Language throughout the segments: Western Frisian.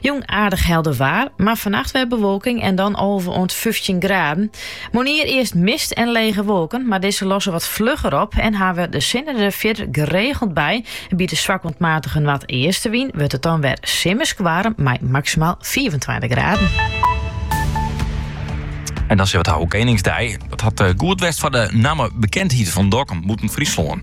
Jûn aardich helder waar, mar fannacht wer bewolking en dan alve oant fyftjin graden. Moarnier earst mist en lege wolken, mar dizze losse wat flugger op en hawwe de sinne der fierder geregeld by. By de swak oant matige noardeastewyn wurdt it dan wer simmersk waarm mei maksimaal fiifentweintich graden. En dan sa't it heart Keningsdei. Dat hat eh, goed west foar de nammebekendheid fan Dokkum bûten Fryslân.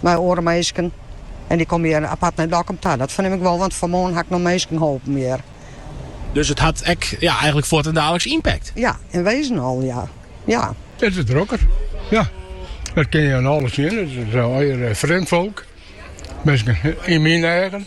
mear oare minsken. En dy komme hjir apart nei Dokkum ta. Dat fernim ik wol, want fan 'e moarn ha ik noch minsken holpen hjir. Dus it hat ek ja, eigenlik fuortendaliks ympakt? Ja, in wezen al, ja. ja. It is drokker, ja. Dat kin je oan alles sjen. It is al eh, frjemd folk. Minsken yn myn eigen.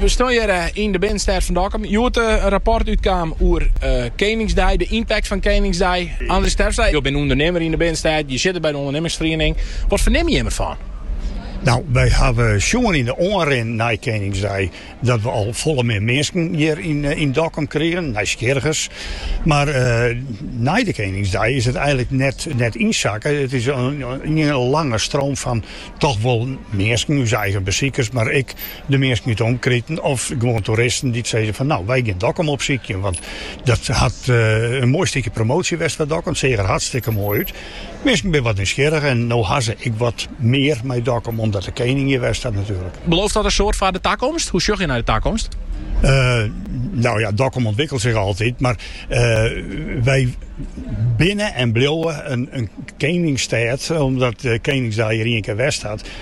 We stean hjir yn de binnenstêd fan Dokkum. Hjoed in rapport útkaam oer Keningsdei, de ympakt fan Keningsdei. Andries Terpstra, jo binne ûndernimmer yn de binnenstêd, jo sitte by de ûndernimmersferiening. Wat fernimme jimme derfan? No, wy hawwe sjoen yn de oanrin nei Keningsdei dat we al folle mear minsken hjir yn Dokkum krigen, nijsgjirrigen. Mar nei de Keningsdei is it eigenlik net ynsakke. It is ien lange stroom fan toch wol minsken, ús eigen besikers, mar ek De minsken út de omkriten of gewoan toeristen dy't sizze fan no, wy gean Dokkum opsykjen, want dat hat in moai stikje promoasje west, Dokkum, seach der hartstikke moai út. Minsken binne wat nijsgjirrich en no ha se ek wat mear mei Dokkum, omdat de kening hjir west hat natuerlik. Belooft dat in soad foar de takomst? Hoe sjoch je nei de takomst? No ja, Dokkum ûntwikkelet sich altyd, mar wy binne en bliuwe in keningsstêd, omdat de keningsdei hjir ien kear west hat.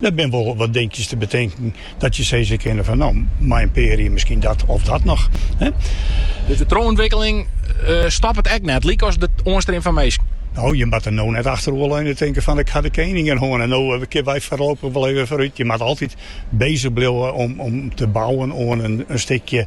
Der binne wol wat dinkjes te betinken dat je sizze kinne fan no, mei in pear jier miskien dat of dat noch. Dus de trochûntwikkeling stoppet ek net, lykas de oanstrim fan minsken? No, je moatte no net achteroer leune en tinke fan ik ha de kening no hân en no kinne wy foarlopich wol even foarút. Je moatte altyd bezich bliuwe om te bouwen oan in stikje